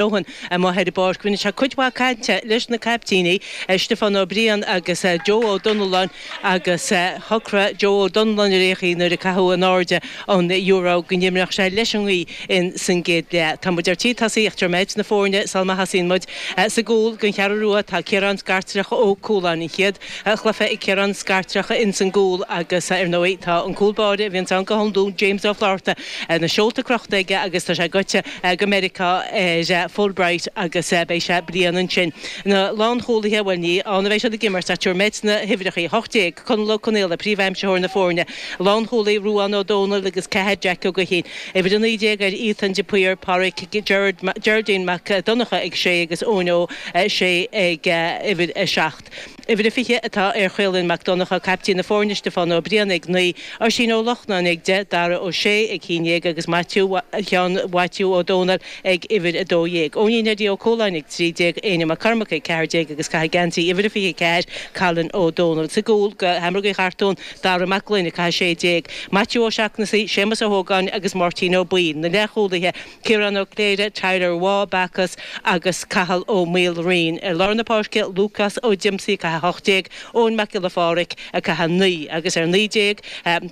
Eoghan amuigh ar an bpáirc, rinne sé cuid mhaith cainte leis na caiptíní, Stiofán Ó Briain agus Joe Ó Donnalláin, agus shocraigh Joe Ó Donnalláin ar aon chaoi nuair a caitheadh in airde an euro go n-imreodh sé leis an ngaoth in san gcéad leath. Tá muid ar tí tosaíocht ach tabharfaidh mé dhuit na foirne sal má thosaíonn muid. Sa gcúl don Cheathrú Rua tá Ciarán Scartreach Ó Cualáin, an chéad. chluiche ag Ciarán Scartreach ins an gcúl agus ar ndóigh tá an cúl báire a bhíonns ann go hiondúil, James Ó Flatharta, na seolta crochta aige agus tá sé goite go Meiriceá ar Fulbright agus beidh sé bliain ansin. Na lánchúlaithe, bhuel ní ann a bheidh siad ag imirt ach tabharfaidh mé dhuit na huimhreachaí, 18, Conall Ó Conaola, príomhaimsitheoir na foirne, lánchúlaí, Ruán Ó Domhnaill agus ceathair, Jeaic Ó Gaoithín, uimhir 19, ar Ethan de Paor, Páraic, Gerard, Geraldine Mac Donnacha ag sé agus Eoin Ó Sé ag uimhir 7. Uimhir a 20 atá ar Chaolin Mac Donnacha, caiptín na foirne, Stiofán Ó Briain ag 9, Oisín Ó Lochnáin ag 10, Dara Ó Sé ag 11 agus Maitiú Sheáin Mhaitiú Ó Domhnaill ag uimhir 12. Eoinín Eddie Ó Cualáin ag 13, Éinne Mac Cormaic ag 14 agus ag caitheamh geansaí uimhir a 24, Colin Ó Domhnaill. Sa gcúl, do Sheamrógaí Chartúin, Dara Mac Gloinn ag caitheamh 16, Maitiú Ó Seachnasaigh, Séamus Ó hÓgáin agus Máirtín Ó Baoill. Na leathchúlaithe. Ciarán Ó Cléire, Tyler Waugh, Bacchus, agus Cathal Ó Maoilraoin. Ar lár na páirce, Lúcás Ó Díomasaigh ag caitheamh 18, Eoin Mac Giolla Pháraic ag caitheamh 9, agus ar naoi déag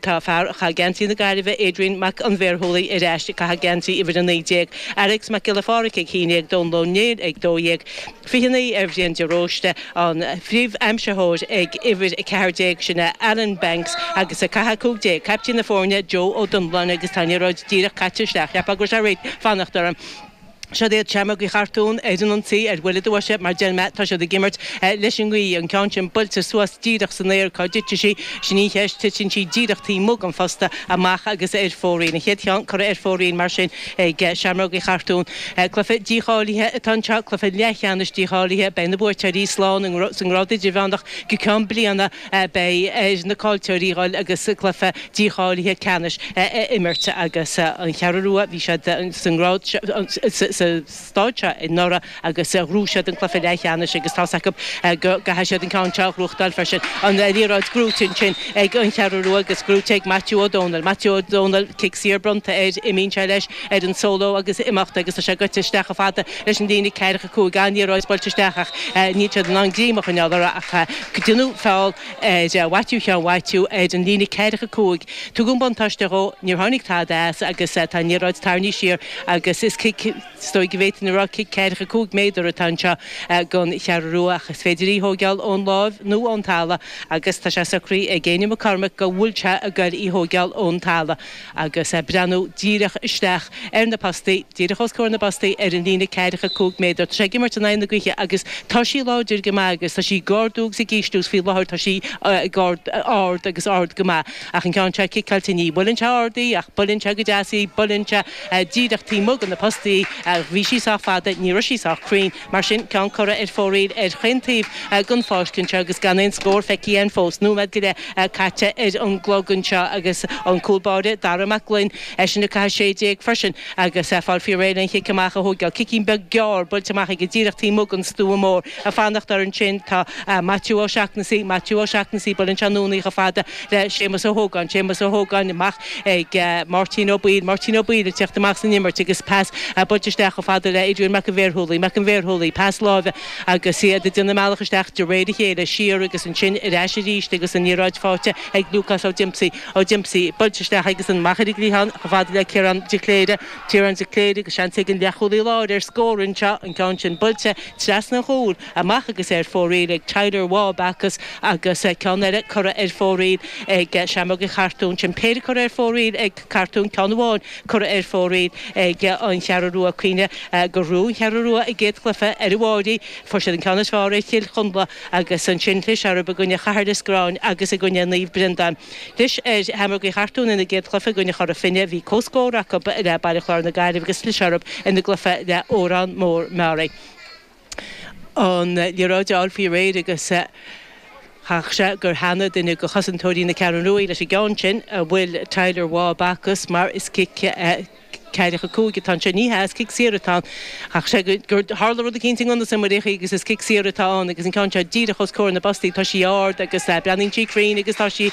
tá fear a chaith geansaí na Gaillimhe, Adrian Mac an Bhearshúiligh, ar ais ag caitheamh geansaí uimhir a naoi déag. Fearghas Mac Giolla Pháraic ag a haon déag, Dónal Ó Néill ag dó dhéag. 29 ar Bhrian de Róiste, an phríomh-aimsitheoir ag uimhir 14, sin é Alan Banks, agus ag caitheamh 15, caiptín na foirne Joe Ó Donnalláin agus tá an liathróid díreach caite isteach, cheapfá go raibh sé ag fanacht orm. Siod iad Seamrógaí Chartúin ar an ionsaí ar bhuille do bhoise mar a deir mé, tá siad ag imirt leis an ngaoth, an ceann sin buailte suas díreach san aer, cá dtitfidh sí? Sin í an cheist, titeann sí díreach taobh amuigh den phosta, amach agus ar fóraoil. An chéad cheann curtha ar fóraoil mar sin. Ag Seamrógaí Chartúin, cluiche dícháilithe atá anseo, cluiche leathcheannais dícháilithe. Beidh na buaiteoirí slán sa ngrád idirmheánach go ceann bliana. Beidh ar na caillteoirí dhul agus cluiche dícháilithe ceannais a imirt agus An Cheathrú Rua, bhí siad sa ngrád seo, sa. stáid seo anuraidh agus ghnóthaigh siad an cluiche leathcheannais agus tá's acu go gcaithfidh siad an ceann seo a ghnóthachtáil freisin. An liathróid gnóthaithe ansin ag an Cheathrú Rua agus gnóthaithe ag Maitiú Ó Domhnaill. Maitiú Ó Domhnaill, cic saor bronnta air, imíonn sé leis ar an solo agus imeacht agus tá sé gaibhte isteach chomh fada leis an líne ceathracha cúig. An-liathróid buailte isteach ach níl siad in ann greim a choinneáil uirthi ach déanadh feall ar Mhaitiú Sheáin Mhaitiú ar an líne ceathracha cúig. Tugadh an buntáiste dhó, níor tháinig tada as agus tá an liathróid tarraingthe siar agus is cic, is dóigh go bhféadfainn a rá cic ceathracha cúig méadar atá anseo don Cheathrú Rua ach is féidir í a thóigeáil ón láimh nó ón talamh agus tá sé socraithe ag Éinne McCormack go bhfuil sé ag goil í a thóigeáil ón talamh agus breathnú díreach isteach ar na postaí, díreach os comhair na bpostaí, ar an líne ceathracha a cúig méadar. Tá sé ag imirt in aghaidh na gaoithe agus tá sí láidir go maith agus tá sí ag ardú agus ag ísliú agus faoi láthair tá sí ag ardú, ard agus ard go maith ach an ceann seo ciceáilte ní bhuaileann sé ard í ach buaileann sé go deas í, buaileann sé díreach taobh amuigh de na postaí í ach bhí sí sách fada, ní raibh sí sách cruinn. Mar sin, ceann curtha ar fóraoil ar chaon taobh den pháirc anseo agus gan aon scór feicthe ann fós. Nóiméad go leith caite ar an gclog anseo agus an cúl báire, Dara Mac Gloinn, eisean ag caitheamh sé déag freisin agus ag fáil faoi réir an chic amach a thógáil. Cicín beag gearr buailte amach aige díreach taobh amuigh den stua mór. Ag fanacht air ansin tá Maitiú Ó Seachnasaigh. Maitiú Ó Seachnasaigh, buaileann sé anonn í chomh fada le Séamus Ó hÓgáin, Séamus Ó hÓgáin, amach chuig Máirtín Ó Baoill, Máirtín Ó Baoill ag teacht amach san imirt agus pas buailte isteach chomh fada le Adrian Mac an Bhéarshúiligh, Mac an Bhéarshúiligh, pas láimhe agus iad ag déanamh a mbealach isteach de réir a chéile, siar agus ansin ar ais arís agus an liathróid faighte ag Lúcás Ó Diomsaigh, Ó Diomsaigh buailte isteach agus an machaire ag rith ann chomh fada le Ciarán de Cléire, Ciarán de Cléire agus seans ag an leathchúlaí láir ar scór anseo, an ceann sin buailte trasna an chúil. amach agus ar fóraoil ag Tyler Waugh Backus agus ceann eile curtha ar fóraoil ag Seamróga an Chartúin sin péire curtha ar fóraoil ag Cartún ceann amháin curtha ar fóraoil ag An Cheathrú Rua cuimhnigh gur bhuaigh an Cheathrú Rua a gcéad chluiche ar an bhFairche fuair siad an ceann is fearr ar Chill Chonla agus ansin chlis orthu i gcoinne Chathair Loistreáin agus i gcoinne Naomh Breandán chlis ar Sheamróga an Chartúin ina gcéad chluiche i gcoinne Chora Finne bhí comhscór acub le Baile Chláir na Gaillimhe agus chlis orthu ina gcluiche le Órán Mór Meáraí. an liathróid a fháil faoi réir agus chaithfeadh sé gur theangaigh duine de chosantóirí na Ceathrún Rua leis an gceann sin, a bhfuil Tyler Waugh Backus mar is cic ceathracha cúig atá anseo, ní hea, is cic saor atá ann, chaithfeadh sé gur tharla rud éicínt i ngan fhios don mholtóir agus is cic saor atá ann agus an ceann seo díreach os comhair na bpostaí, tá sí ard agus breathnaíonn sí cruinn agus tá sí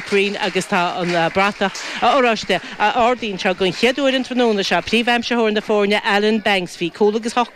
cruinn agus tá an bratach oráiste ardaithe don chéad uair an tráthnóna seo, príomhaimsitheoir na foirne Alan Banks, bhí cúl agus hocht